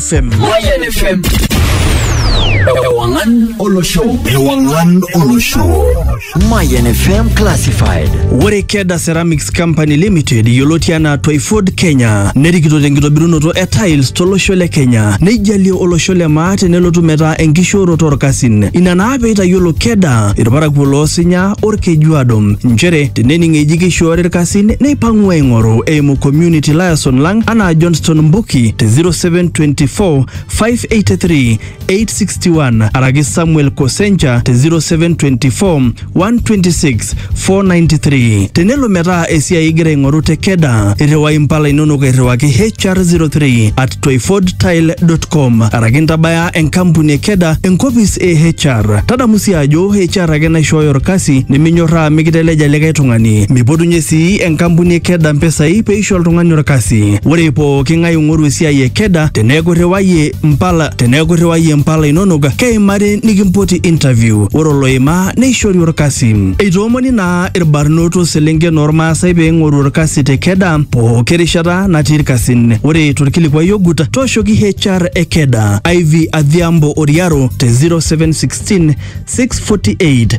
FM. Moyen FM. Ewangan Olo Show. Ewangan Olo Show. Mayan FM Classified. Ore Keda Ceramics Company Limited yioloti anaa Twyford Kenya nerikito tenkitobirunoto e tiles tolosho le Kenya neijalie olosho le maa tenelotu metaa enkishooroto orkasin. Ina naa peitayiolo Keda irparakuo loosinya orkejuado nchere tenening eji keishoori irkasin neipang'u aing'oru eimu community liaison lang anaa Johnston Mbuki ki te 0724 583 861 araki Samuel Kosenja te 0724 126 493. Tenelo metaa esiai igira aing'oru te Keda, irriwai impala inonok airriwaki HR03 at toifordtile.com araki intabaya enkampuni e Keda enkopis e HR. Tadamu sii ajo HR ake naishooyo orkasi niminyorraa mikiteleja likae tung'ani. Mipotunye sii enkampuni e Keda mpisai pee eisho oltung'ani olkasi. Ore pooki ng'ae oing'oru esiai e Keda teneeku irriwayie mpala teneeku irriwayie mpala inonok keimari nikimpoti interview. Ore oloima neishori olkasi. Eitoomoni naa ilbarnot o selenken oolmaasai pee eing'oru olkasi te Keda pooki rishata natii ilkasin. Ore tolkilikuai ogut tooshoki HR e Keda, Ivy Adhiambo Oriaro te 0716 648